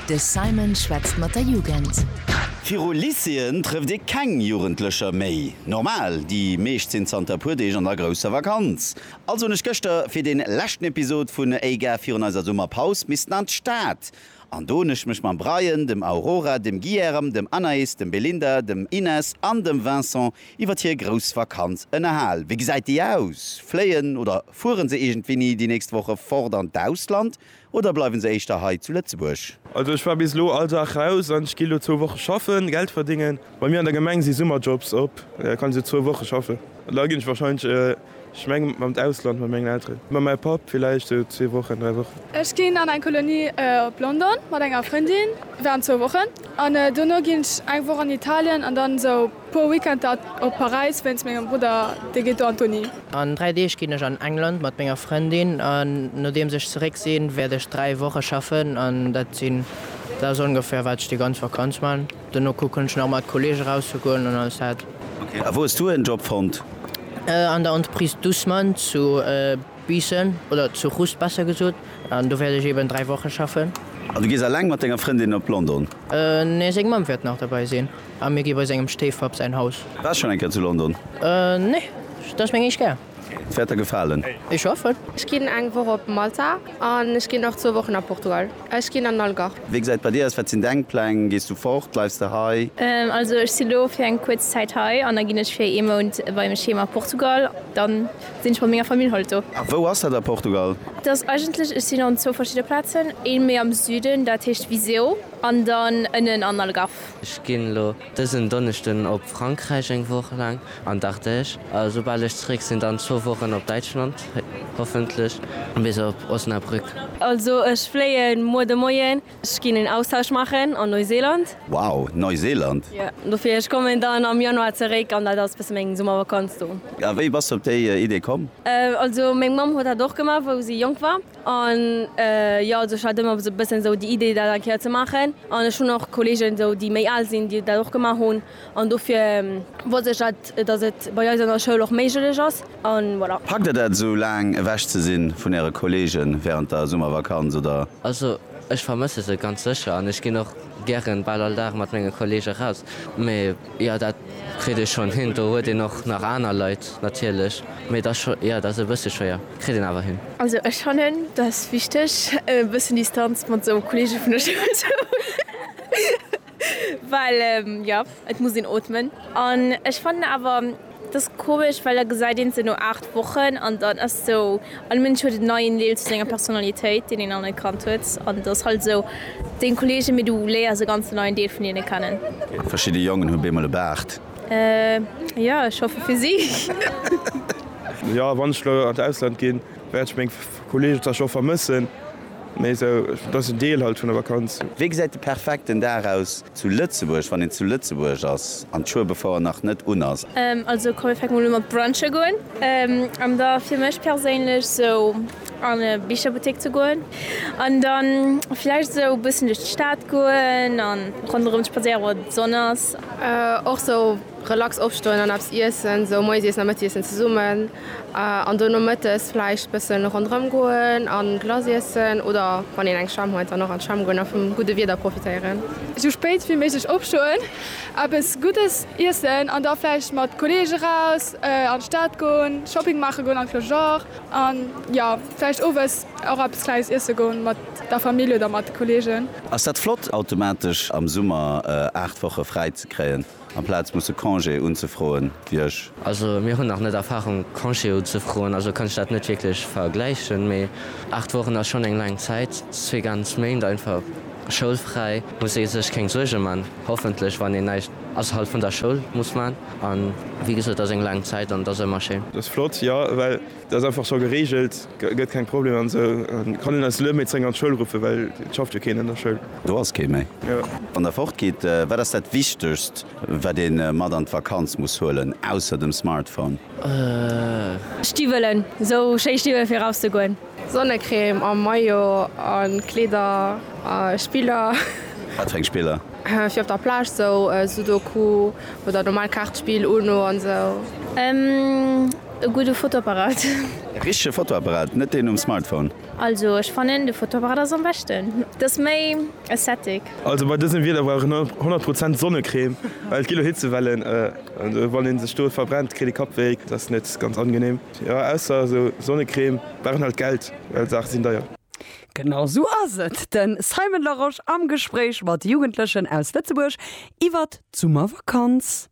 De Simon schwätzt mat der Jugend. Viru Lycéeën trëfft ee keng Jugendlecher méi. Normal, déi meescht sinn zanter e puer Deeg an der grousser Vakanz. Also hunn ech gëschter fir dee leschten Episod vun Ey Gare virun eiser Summerpaus missten an d'Stad. An do hunn ech mech mam Brian, dem Aurora, dem Guilherme, dem Anaïs, dem Belinda, dem Inès an dem Vincent Iwwert hir grouss Vakanz ënnerhal. Wéi gesäit déi aus? Fléien oder fueren se iergendwéi ni déi nächst Woche fort an d'Ausland oder bleiwen se éischter hei zu Lëtzebuerg? Also ech war bis elo all Dag raus an ech gi elo zwou Woche schaffen, Geld verdéngen. Bei mir an der Gemeng si Summerjobs op, kann ech elo zwou Woche schaffen. Da ginn ech wahrscheinlech Ech meng mam d'Ausland mat mengen Elteren, mam mäi Papp villäicht sou zwee Wochen, dräi Wochen. Ech ginn an eng Kolonie op London mat enger Frëndin, waren zwou Wochen an dono ginn ech eng Woch an Italien an dann sou puer Weekender op Paräis wéinst mengem Brudder, dee geet do an d'Uni. An dräi Deeg ginn ech an England mat menger Frëndin an nodeems ech zeréck sinn, wäert ech dräi Woche schaffen an dat sinn, dat ass ongeféier wat ech déi ganz Vakanz man. Dono kucken ech nach mat Kollegen raus ze goen an alles dat. Ok, a wou hues du en Job fonnt? An der Entreprise Dussmann zu Biissen, oder zu Rust besser gesot, an do wäert ech eben 3 Wochen schaffen. An du gees alleng mat denger Frëndin op London? Nee, seng Mamm wäert nach derbei sinn, a mir gi bei sengem Stéifpapp säin Haus. Waars schon eng Kéier zu London? Nee, dat ass meng éischt Kéier. D'Wäerter gefalen. Ech schaffen. Ech ginn eng Woch op Malta an ech ginn nach zwou Wochen a Portugal. Ech ginn an den Algarve. Wéi gesäit et bei dir aus? Wat sinn deng Pläng? Gees du fort? Bleifs de hei? Also ech sinn elo fir eng kuerz Zäit hei an da ginn ech fir ee Mount bei mech heem a Portugal. Dann sinn ech mat menger Famill halt do. A wou ass dat a Portugal? Et ass eigentlech, ech sinn an zwou verschidde Plazen. Ee méi am Süden, dat heescht Viseu, an dann ënnen an Algarve. Ech ginn elo Dësen Donneschden op Frankräich eng Woch laang an d'Ardèche a soubal ech zeréck sinn dann zwou Wochen op Däitschland, hoffentlech bis op Osnabrück. Also ech fléien muer de Moien, ech ginn en Austausch maachen an Neuseeland. Wow, Neuseeland? Jo, dofir ech kommen dann am Januar zeréck an dat ass bësse meng Summervakanz do. A wéi bass de op déi Idee komm? Also meng Mamm huet dat och gemaach wou si jonk war. An jo, also ech hat ëmmer esou e bëssen esou déi Idee dat eng Kéier ze maachen. An ech hunn och Kolleegen esou déi méi al sinn, déi dat och gemaach hunn. An dofir wosst ech dat, datt et bei eis an der Schoul och méiglech ass. An voilà. Packt der dat esou laang ewech ze sinn vun äre Kolleegen während der Summervakanz oder? Also ech vermësse se ganz sécher an ech ginn och gären bal all Dag mat menge Kolleege raus. Mee. Jo dat kritt ee schonn hin. Do huet een och nach aner Leit natierlech, mee et ass scho, jo et ass e bësse schwéier, kritt een awer hin. Also ech fannen et ass wichteg e bëssen Distanz mat esou Kolleege vun der Schoul ze hunn, well jo et muss een ootmen an ech fannen awer, Et ass komesch, well da gesäit een se no 8 Wochen an dann ass sou, all Mënsch huet en neien Deel zu senger Personalitéit, deen een nach net kannt huet an et ass halt sou, deng Kollegen, mee du léiers e ganzen neien Deel vun hinne kennen. Verschidde Jongen hu beemol e Baart. Jo, ech hoffe fir si. Jo, wann ech elo an d'Ausland ginn, wäert ech meng Kollegen wahrscheinlech och vermëssen. Mee esou, et ass en Deel halt vun der Vakanz. Wéi gesäit de perfekten Dag aus zu Lëtzebuerg, wann een zu Lëtzebuerg ass an d'Schuebefouer nach net un ass? Also komm mir fänke mol u mat brunche goen an da fir mech perséinlech sou an e Bicherbuttek ze goen an da vläicht sou e bëssen duerch d'Stad goen a ronderëm spadséieren wann d'Sonn ass. Och sou Relax opstoen an eppes iessen, sou moies iessen a Mëttiessen zesummen an dono mëttes vläicht bësse ronderëm goen a Glace iessen oder wann een eng Schwämm huet dann och an d'Schwämm goen a vum gudde Wieder profitéieren. Sou spéit wéi méiglech opstoen, eppes Guddes iessen an da vläicht mat Kolleegen eraus an d'Stad goen, Shopping maache goen an de Fleisure an jo vläicht owes och eppes Klenges iesse goen mat der Famill oder mat de Kolleegen. Ass dat flott automatesch am Summer 8 Woche fräi ze kréien? Amplaz musse Congé unzefroen, wier ech. Also mir hunn nach net Erfahrung Congé unzefroen, also kann ech dat net wierklech vergläichen. Mee 8 Wochen ass schonn eng laang Zäit, zwee ganz Méint einfach schoulfräi, muss ee sech keng Suerge man, hoffentlech, wann een näischt ausserhalb vun der Schoul muss man. An wéi gesot, ass eng laang Zäit an et ass ëmmer schéin. Dat ass flott, jo, well Dat ass einfach scho gereegelt, gëtt keng Problemer an esou. Kann een eis Luemetzeng an d'Schoul ruffen, well et schafft jo keen an der Schoul. Do ass kee méi. Wann der fort gitt, wat ass dat wichtegst wat ee mat an d'Vakanz muss huelen, ausser dem Smartphone? Stiwwelen, esou schéi Stiwwelen fir eraus ze goen. Sonnecrème a Maillot a Kleeder a Spiller. Wat fir eng Spiller? Fir op der Plage, esou Sudoku oder normal Kaartspill, Uno an esou. E gudde Fotoapparat. E richtege Fotoapparat, net deen um Smartphone. Also ech fannen de Fotoapparat ass am beschten, et ass méi aesthetic. Also bei dësem Wieder brauch een 100 Prozent Sonnecrème, well et gi lo Hitzewellen an wann een sech do verbrennt kritt ee Kappwéi, dat ass net ganz angenehm. Jo ausser esou Sonnecrème brauch een halt Geld, well Saache sinn deier. Genau sou ass et, den Simon Larosche am Gespréich mat Jugendlechen aus Lëtzebuerg iwwert d'Summervakanz.